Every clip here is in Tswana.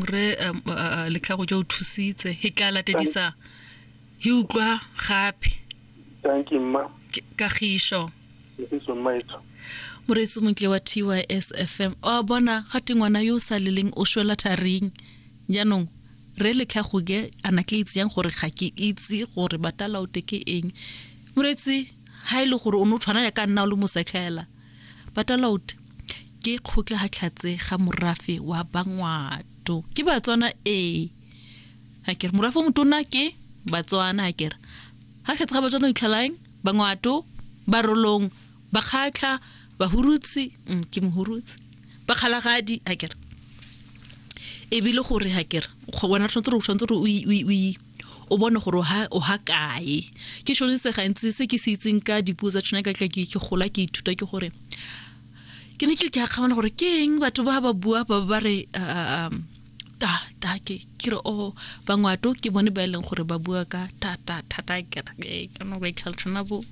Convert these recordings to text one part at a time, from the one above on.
re um, uh, uh, letlhago jo o thusitse he tla latedisa he utlwa gape thank you mma Ke- kagišo isiso mma etso moreetsi montle wa tys fm o bona ga te ngwana yo o sa leleng o shwela tharing jaanong re letlhago ke ana ke itse yang gore ga ke itse gore batalaote ke eng moreetsi ga e le gore o ne o tshwana ya ka nna o le mosetlhela Batalaut ke kgotlahatlhatse ga morafe wa Bangwato. Ke Batswana ee. A kere morafe o motona ke Batswana a kere. Ha tlhatse ga Batswana itlhalaeng Bangwato barolong bakgatlha bahurutsi mm, ke mohurutsi bakgalagadi a kere. Ebile gore ha kere go bona tshwanetse re tshwanetse re o o bone gore o ha kae ke shone se gantsi se ke se itseng ka dipuo tsa tshwana ka tla ke gola ke ithuta ke gore ke ne ke ke akgamana gore ke eng batho ba ba bua ba ba re um, ta ta ke ke re o oh, bangwato ke bone ba e leng gore ba bua ka ta ta ta ta ke re ke no ba itlhala tshwana bo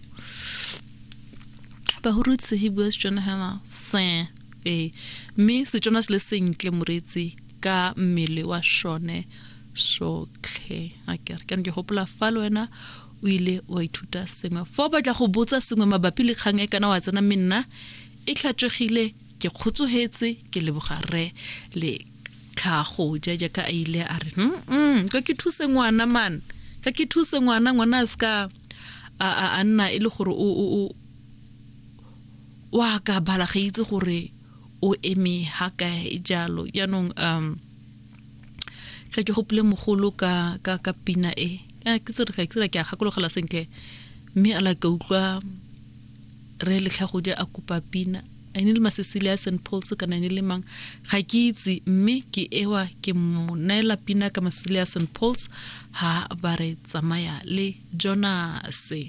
ba hurutse he bua setswana hema se ee mme setswana se le sentle moretsi ka mmele wa shone sotlhe a kere ke ke gopola fa le wena o ile wa ithuta sengwe fa o batla go botsa sengwe mabapi le kgang e kana wa tsena mme nna e tlhatswegile ke kgotsogetse ke leboga rre le tlhago ja jaaka a ile a re mm ka ke thuse ngwana man ka ke thuse ngwana ngwana a seka a nna e le gore o o wa ka bala ga itse gore o eme ha kae jalo jaanong um tla ke gopole mogolo ka ka ka pina e a ke tsere ke tsere ke a gakologela sentle mme a la ka utlwa re letlhagodi a kopa pina a ne le masesile a St Paul's kana ne le mang ga ke itse mme ke ewa ke mo naela pina ka masesile a St Paul's ha ba re tsamaya le Jonase